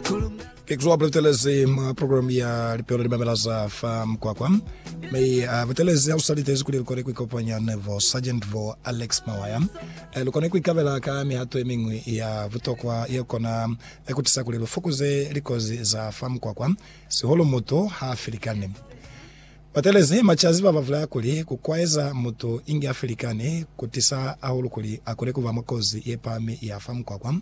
Thanks wa pretelezi ma program ya lipelo li mamela za fa mkwakwa. Me a pretelezi au salitezi kuli likone ku ikopanya ne vo Sergeant vo Alex Mawaya. E likone ku ikabela ka mihato e mingwi ya butokwa ye kona e ku tisa kuli lu fokuze likozi za fa mkwakwa sihulu mutu ha filikani. Batelezi machazi ba ba vulaya kuli ku kwaeza mutu inge a filikani ku tisa hahulu kuli a kone ku ba mwa kozi ye pami ya fa mkwakwa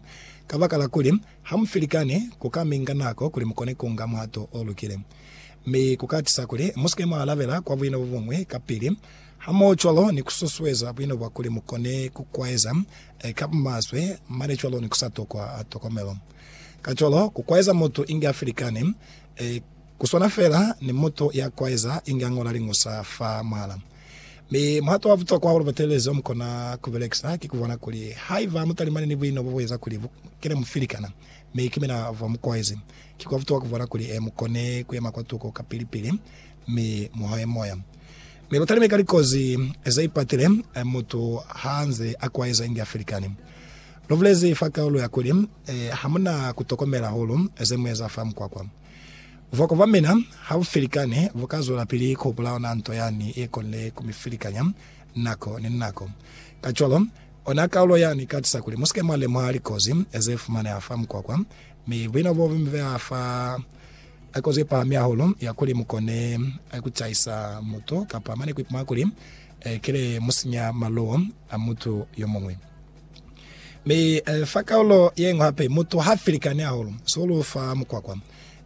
kabakala kuli Ha mu filikani, ku ka mi nga nako kuli mu kone ku nga muhato o lukile. Mi ku ka tisa kuli mu si ke mwa alabela kwa buino bo buñwi kapili, hamohocwalo ni ku susueza buino bwa kuli mu kone ku kwaeza ka bumaswe mane cwalo ni ku sa tokwa tokomelo. Kacwalo, ku kwaeza mutu inge a filikani ku swana feela ni mutu ya kwaeza inge a ñola liñusa fa muhala. Mi muhato wa butokwa wa lubatelezi omukona kubelekisa ki kubona kuli haiba mutalimani ni buino bobueza kuli bu kene mufili kana, mi ki mina bwa mukoezi. Ki kwa butokwa kubona kuli e mukone kuyema kwa tuko kapili-pili mi muhoye moya. Mi lutalime ka likozi zeipatile mutu haanze akuaeza inge afilikani. Lubulezi fa kaulu ya kuli, Hamuna kutokomela hahulu zemueza fa mukwakwa. Bwakobamena ha bu felikane bu ka zwelapili ku hupula ona nto yani ye konile ku mi felikanya nako ni nako. Kacwalo, ona kaulo yani i ka tusa kuli mu si ke mwa lemuha likozi ze fumaneha fa mukwakwa, mi buino bo bu mi beha fa kozi ye pahami hahulu ya kuli mu kone ku caisa mutu kapa mane ku ipumana kuli kile mu sinya maluwo a mutu yo muñwi. Mi fa kaulo ye ñwi hape, mutu ha felikani hahulu sihulu fa mukwakwa,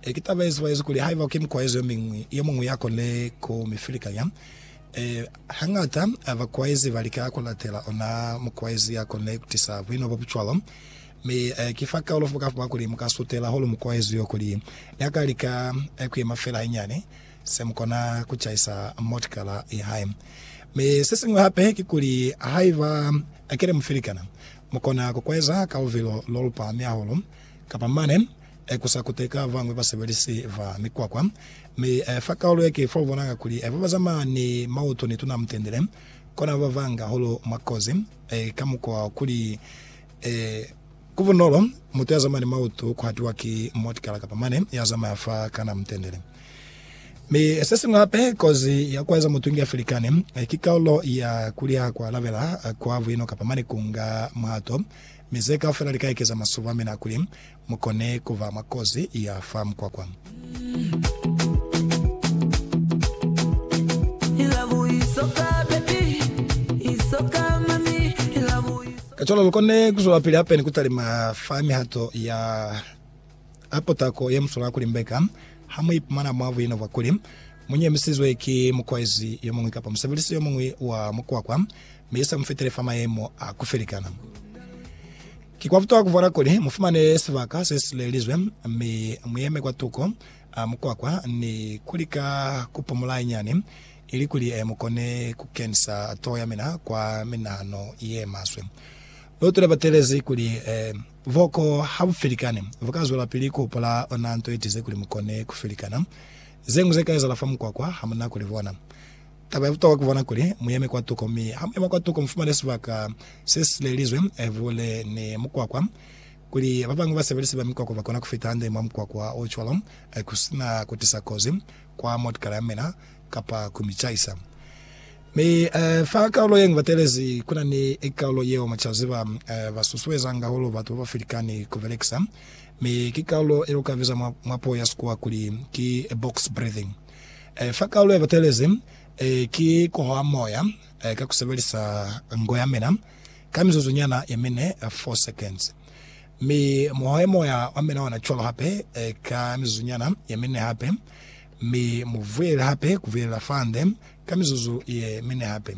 E, ki taba ye zibaezi kuli haiba ki mukwaezi yomiñwi, yomuñwi ya kone ku mi filikanya. E, hañata bakwaezi ba lika ku latela ona mukwaezi ya kone ku tisa buino bo bu cwalo. Mi e, ki fa kaulo fa bukafu bwa kuli mu ka sutela hulu mukwaezi yo kuli ni a ka lika ku yema fela hainyiani, se mu kona ku caisa motikala ya hae. Mi se siñwi hape ki kuli, haiba ki ne mu filikana, mu kona ku kwaeza ka luvilo lo lu pahami hahulu, kapa mane, e ku sa kuteka ba bañwi basebelisi ba mikwakwa, mi e fa kaulu ye ki fo u bonanga kuli ba ba zamaya ni mautu ni tuna mutendele kona ba banga hahulu mwa kozi, e ka mukwa wa kuli e ku bunolo mutu ya zamaya ni mautu ku hatiwa ki motikala kapa mane ya zamaya fa kana mutendele. Mi se siñwi hape, kozi ya ku eza mutungi ya filikani ki kaulu ya kuli ha ku alabela kwa buino kapa mane ku nga muhato Mi ze kaufela li ka ekeza masulu a mina kuli mu kone ku ba mwa kozi ya fa mukwakwa. Kacwalo lu kone ku zwelapili hape ni ku talima fa mihato ya. a putako ye muswala kuli mbeka ha mu ipumana mwa buina bwa kuli mu nyemisizwe ki mukwaezi yo muñwi kapa musebelisi yo muñwi wa mukwakwa mi i sa mu fitele fa mayemo a ku felikana. Ki kwa butokwa ku vwala kuli mu fumane sibaka se si lelizwe mi mu yeme kwa tuko a mukwakwa ni ku lika ku pumula hanyani ilikuli mu kone ku kenisa toho ya mina kwa minahano ye maswe. Lu tule batelezi kuli, Boko ha bu felikani, bu ka zwelapili ku hopola ona nto ye tize kuli mu kone ku felikana. Ze ñwi ze ka ezahala fa mukwakwa, ha mu na ku li bona. Taba ya butokwa ku bona kuli mu yeme kwa tuko, mi ha mu yema kwa tuko mu fumane sibaka se si silelizwe buhule ni mukwakwa, kuli ba bañwi basebelisi ba mikwakwa ba kona ku fita hande mwa mukwakwa o cwalo ku si na ku tisa kozi kwa mootokara ya mina kapa ku mi caisa. Mi fa kaulo ye ngibatelezi kuna ni kaulo yeo mucazi ba ba susuezanga hahulu batu baba filikani ku belekisa, mi ki kaulo ye uka biza mwa puo ya Sikuwa kuli ki box breathing. Fa kaulo ye batelezi ki kuhoha moya ka kusebelisa ngo ya mina ka mizuzu nyana ye mine, 4 seconds. Mi muhohe moya wa mina ona cwalo hape ka mizuzu nyana ye mine hape. Mi mu vulele hape kubulelela fande ka mizuzu ye mine hape.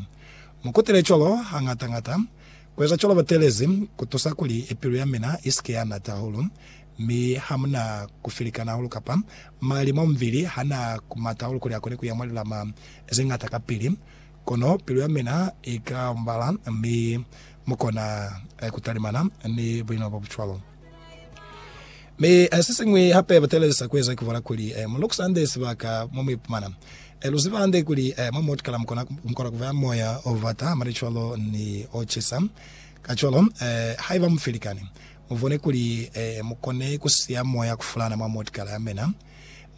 Mu kutele cwalo hañata-ñata. Kueza cwalo batelezi kutusa kuli pilu ya mina isike ya nata hahulu, mi hamuna kufilikana hahulu kapa mali mwa mubili hana kumata hahulu kuli akone kuya mwa lilama zeñata kapili. Kono pilu ya mina ika ombala mi mukona kutalimana ni bulinwa bobucwalo. Mi sesiñwi hape batelelisa kueza kibona kuli mu lukusa hande sibaka momuipumana. Luziba hande kuli mwa muotikala mukona kuba moya obata hamane cwalo ni ocisa. Kacwalo, haiba mufilikani, mubone kuli mukone kusiya moya kufulana mwa muotikala yamina.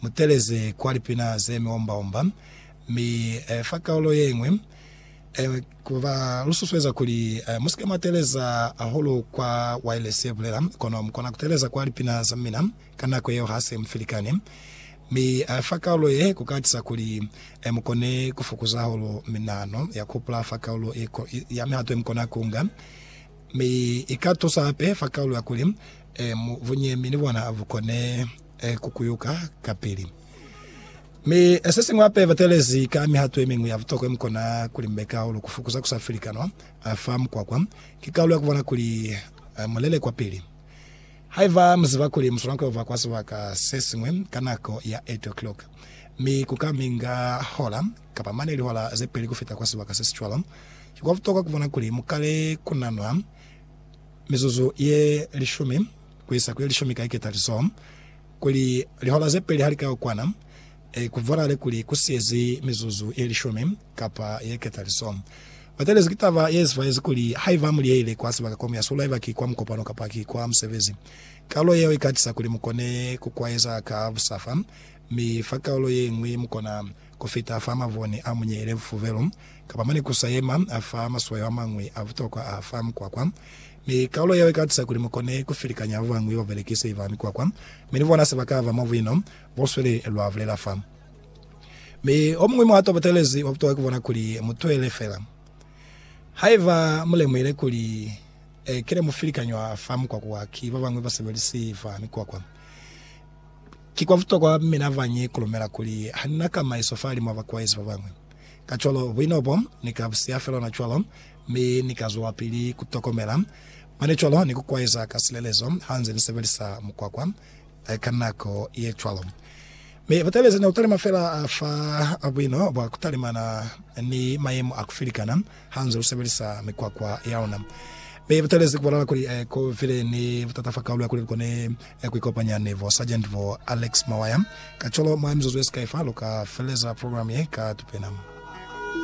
Muteleze kwa lipina zemiomba-omba, mi fa kaulo yeñwi Ku ba lususueza kuli musike mwa teleza hahulu kwa wailesi ye bulela, kono mukona kuteleza kwa lipina za mina ka nako yeo hase mufilikani. Mi fa kaulo ye, kuka tisa kuli mukone kufukuza hahulu minahano ya kuhupula fa kaulo ye ya mihato yemukona kuunga. Mi ika tusa hape fa kaulo ya kuli bunyemi ni bona bukone kukuyuka kapili. Mi sesiñwi hape batelezi ka mihato yemiñwi ya butokwa yemukona kulimbeka hahulu kufukuza kusafilikanwa fa mukwakwa, ki kalu ya kubona kuli mulele kwapili. Haiba muziba kuli muswana kuyova kwa sibaka sesiñwi ka nako ya 8 o'clock, mi kuka minga hola kapa mane lihola zepeli kufita kwa sibaka sesicwalo, ki kwa butokwa kubona kuli mukale kunanwa mizuzu ye lishumi kuisa kuyelishumi ka iketalizoho. Kuli lihora ze peli ha li ka yo kwana, ku bonahale kuli ku siyezi mizuzu ye lishumi kapa ye ketaliso. Ba telezi ki taba ye zifaezi kuli haiba mu liyeyile kwa sibaka komu ya sulu, haiba ki kwa mukopano kapa ki kwa musebezi, kaulo yeo i ka tisa kuli mu kone ku kwaeza ka busafa, mi fa kaulo ye ñwi mu kona kufita fa mavuni a munyele, fufubelu, kapa mane kusa yema, a fa maswayo amañwi a butokwa a fa mikwakwa. Mi kaulo yeo ikatisa kuli mukone kufilikanya babañwi babelekisi ba mikwakwa, mi ni bona sebaka ba mabuino bosweli lwa bulela fa. Mi omuñwi muhato obutelezi wa butokwa kubona kuli mutwele fela. Haiba mulemuhile kuli kile mufilikanywa fa mikwakwa ki babañwi basebelisi ba mikwakwa, Ki kwa butokwa mina ba nyi kulumela kuli ha ni na kamaiso fahalimw'a bakuwaizi ba bañwi. Kacwalo, buino bo ni ka bu siya fel'ona cwalo, mi ni ka zwelapili ku tokomela mane cwalo ni ku kuwaiza ka silelezo ha nze ni sebelisa mukwakwa ka nako ye cwalo. Mi butaleziñi ku talima fela fa buino bwa ku talimana ni mayemo a ku filikana hanze u sebelisa mikwakwa ya ona. Mi bu talezi ku bonala kuli ku bile ni butata fa kaulo ya kuli lu kone ku ikopanya ni bo Sargent bo Alex Mawaya. Kacwalo, mwa mizuzu ye sikai fa, lu ka feleleza programe ye ka tupena.